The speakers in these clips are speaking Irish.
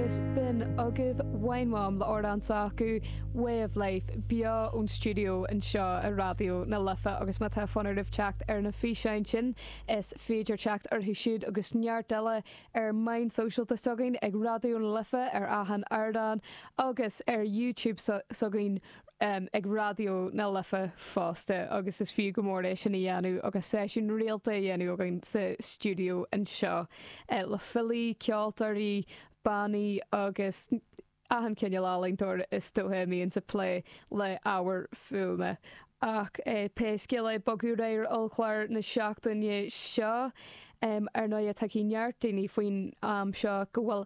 Is sin agaibh IMLÉ le amhrán s'acu Way of Life beo ón stiúideo anseo i Raidió na Life agus má tá fonn oraibh teacht ar na físeáin sin is féidir teacht orthu siúd agus neart eile ar mheáin shóisialta s'againn ag Raidió na Life ar achan ardán agus ar YouTube s'againn ag Raidió na Life fosta agus is fiú go mór é sin a dhéanamh agus seisiúin rialta á ndéanamh againn sa stiúideo anseo le filí, ceoltóirí, bannaí agus achan chineál ealaíontóir is dóiche a bíonn ag plé le ábhair fuaime. Ach pé scéal é, ag bogadh ar aghaidh ar chlár na seachtaine seo. Ar ndóighe, tuigfidh neart daoine faoin am seo go bhfuil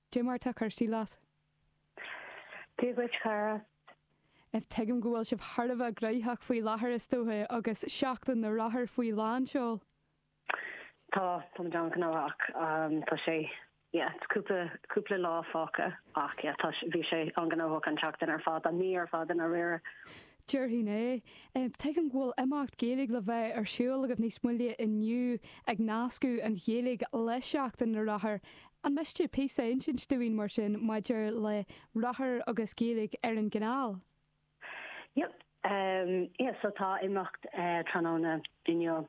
Dé mar tá cúrsaí leat. Dia dhuit chara. Tuigim go bhfuil sibh thar a bheith gnoitheach faoi láthair is dóiche agus Seachtain na Rothar faoi lán seoil? Tá, tá muid an-ghnóthach. Tá sé, yeah, cúpla, cúpla lá fágtha ach yeah, tá sé, bhí sé an-ghnóthach an tseachtain ar fad, an mí ar fad i ndáiríre. Déarfainn é. Tuigim go bhfuil imeacht Gaeilge le bheith ar siúl agaibh níos moille inniu ag nascadh an Ghaeilge le Seachtain na Rothar An miste píosa a insint domh, mar sin, maidir le rothar agus Gaeilge ar an gcanáil? Yep. Yeah, so tá imeacht tráthnóna inniu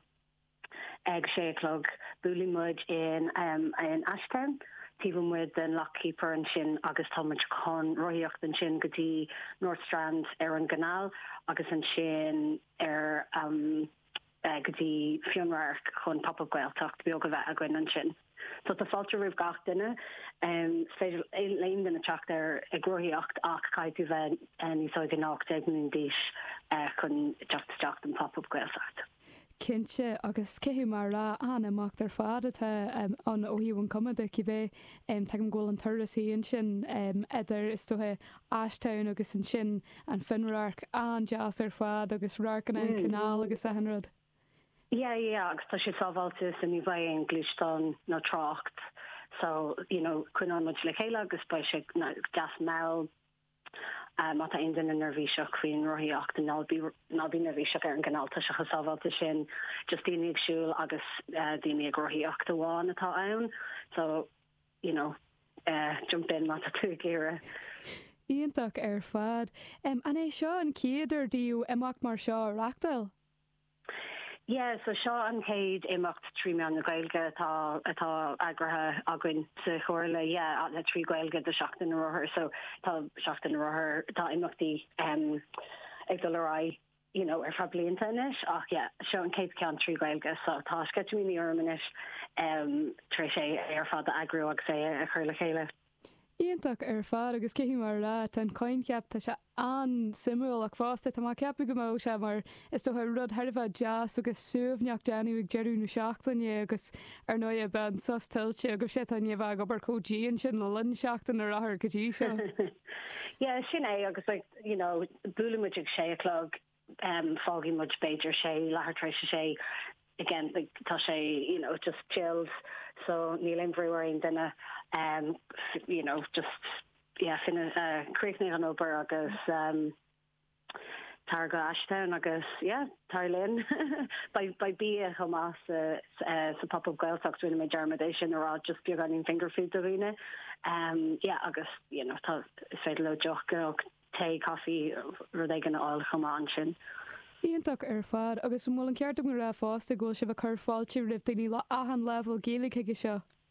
ag a sé a chlog. Buailfidh muid in in Ashtown, taobh amuigh den Lock Keeper ansin agus tá muid chun rothaíocht ansin go dtí North Strand ar an gcanáil agus ansin ar an. go dtí Fionnradharc chun Pop Up Gaeltacht beag a bheith againn ansin. So tá fáilte roimh gach duine. Is féidir le haon duine teacht ar ag rothaíocht ach caithfidh tú bheith níos óige ná 18 mbliana d'aois chun teacht isteach don Pop Up Gaeltacht. Cinnte, agus cé go mar a deir tú an-imeacht ar fad atá ann ó thaobh an chuma de cibé. Tuigim go bhfuil an turas sin ansin idir, is dóiche, Ashtown agus ansin an Fionnradharc, an-deas ar fad agus radharcanna an canal agus achan rud. Yeah, yeah, agus tá sé sábháilte so ní bheidh aon gluaisteán nó trácht so you know coinneoidh muid le chéile agus beidh sé deas mall má tá aon duine neirbhíseach faoin rothaíocht ná bí ná bí neirbhíseach ar an gcanal tá sé chomh sábháilte sin, just daoine ag siúl agus daoine ag rothaíocht amháin atá ann so. you know jump in má tá tú ag iarraidh. Iontach ar fad. An é seo an chéad uair daoibh imeacht mar seo a reachtáil? Yeah, so seo an chéad imeacht trí mheán na Gaeilge atá atá eagraithe againn sa Chomhairle, yeah, le trí Ghaeilge do Seachtain na Rothar, so tá Seachtain na Rothar, tá imeachtaí ag dul ar aghaidh. you know, ar feadh blianta anois ach yeah, seo an chéad cheann trí Ghaeilge so tá sceitimíní orm anois em tar éis é ar fad a eagrú agus é a chur le chéile. Iontach ar fad agus caithfidh mé a rá tá an coincheap tá sé an-suimiúil ach fosta tá mé ag ceapadh go mbeadh sé mar is dócha rud thar a bheith deas agus suaimhneach le déanamh ag deireadh na seachtaine agus ar ndóighe beidh an sos tuillte agaibhse atá inniu ag obair chomh dian sin le linn Seachtain na Rothar go dtí seo. Yeah sin é agus like, you know buaileann muid ag sé a chlog em fágfaidh muid b'fhéidir sé leathuair tar éis a sé again like tá sé you know just chilled so níl aon bhrú ar aon duine em you know just yeah fin eh críochnaigh ón obair agus em tar go Ashtown agus yeah. tar linn. Beidh bia chomh maith sa Pop Up Gaeltacht, rinne mé dearmad é sin a rá, just beagáinín finger food do dhaoine. Yeah agus you know tá, is féidir leo deoch, tae, caife, rud éigin a fháil chomh maith ansin. Iontach ar fad. Agus an bhfuil an ceart agam a rá fosta go bhfuil sibh ag cur fáilte roimh daoine le achan leibhéal Gaeilge chuige seo?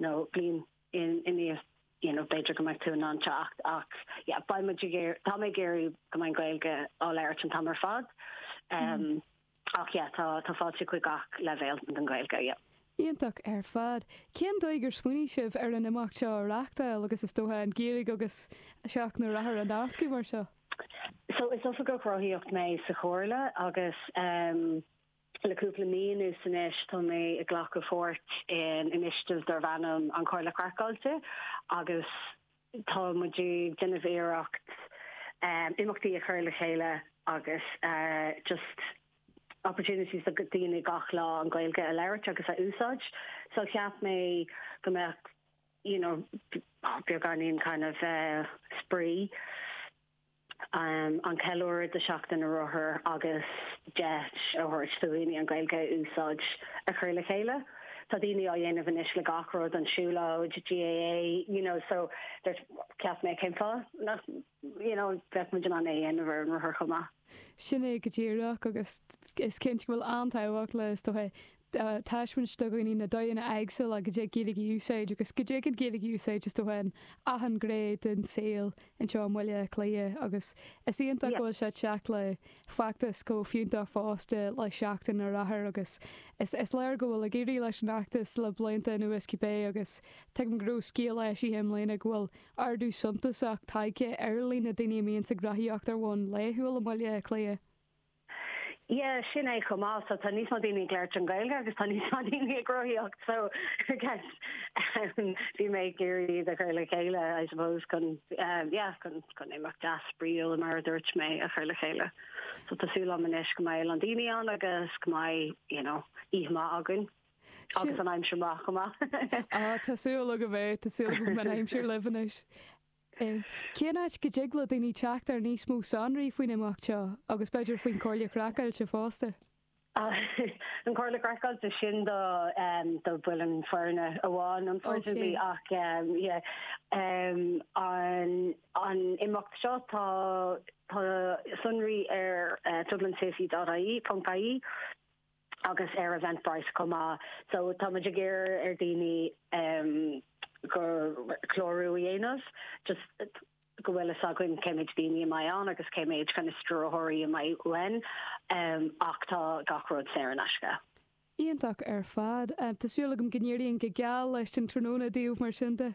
nó bliain inniu you know b'fhéidir go mbeidh tú in ann teacht ach yeah beidh muid ag iarraidh tá mé ag iarraidh go mbeidh Gaeilge á labhairt an t-am ar fad um, ach yeah tá tá fáilte chuig gach leibhéal den Gaeilge yeah. Iontach ar fad. Cén dóigh ar smaoinigh sibh ar an imeacht seo a reáchtáil agus is dócha an Ghaeilge agus Seachtain na Rothar a nascadh mar seo? So is oifigeach rothaíocht mé sa chomhairle agus um, Le cúpla mí anuas anois tá mé ag glacadh páirt in initiative darb ainm An Chomhairle Craiceáilte agus tá muid ag déanamh iarracht imeachtaí a chur le chéile agus just opportunities do dhaoine gach lá an Ghaeilge a labhairt agus a úsáid so cheap mé go mbeadh you know beagáinín kind of spraoi an ceiliúradh de Sheachtain na Rothar agus deis a thabhairt do dhaoine an Ghaeilge a úsáid a chur le chéile. Tá daoine á dhéanamh anois le gach rud, dul ag siúlóid, GAA, you know so dúirt cheap mé cén fáth nach you know bheadh muid in ann é a dhéanamh ar an rothar chomh maith. Sin é go díreach agus is cinnte go bhfuil an-tábhacht le is dócha a thaispeáint do dhaoine na dóigheanna éagsúla go dtig Gaeilge a úsáid agus go dtig an Ghaeilge a úsáid, is dócha, in achan ghné den saol anseo i mBaile Átha Cliath agus is iontach go bhfuil sé ag teacht le feachtas chomh fiúntach fosta le Seachtain na Rothar agus is léir go bhfuil ag éirí leis an fheachtas le blianta anuas cibé agus tuigim go raibh scéal eisithe i mbliana go bhfuil ardú suntasach tagtha ar líon na ndaoine a bíonns ag rothaíocht ar bhonn laethúil i mBaile Átha Cliath. Yeah, sin é chomh maith, so tá níos mó daoine ag labhairt an Ghaeilge agus tá níos mó daoine ag rothaíocht, so I guess em bhí mé ag iarraidh iad a chur le chéile I suppose chun em yeah chun imeacht deas spraíúil mar a dúirt mé a chur le chéile. So tá súil agam anois go mbeidh a lán daoine ann agus go mbeidh you know oíche maith againn. Agus an aimsir maith chomh maith. Ah tá súil agam é, tá súil agam go mbeidh an aimsir libh anois. Cén áit go dtig le daoine teacht ar níos mó sonraí faoin imeacht seo agus b'fhéidir faoin Comhairle Craiceáilte fosta? An Comhairle Craiceáilte, sin do bhaill an foirne amháin unfortunately ach an imeacht seo tá sonraí ar Dublin City dot IE, ponc IE. agus ar Eventbrite chomh maith so táimid ag iarraidh ar daoine clárú a dhéanamh just go bhfuil fhios againn cé méid daoine a bheidh ann agus cé méid kind of stiúrthóirí a mbeidh uainn ach tá gach rud saor in aisce. Iontach ar fad. Tá súil agam go n-éiríonn go geal leis an tráthnóna daoibh mar sin de.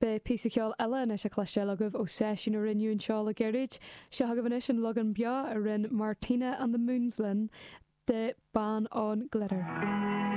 Beidh píosa ceoil eile anois le cloisteáil agaibh ó seisiún a rinneadh anseo le gairid. Seo agaibh anois an leagan beo a rinne Martina and the Moons linn de 'Ban on Glitter'.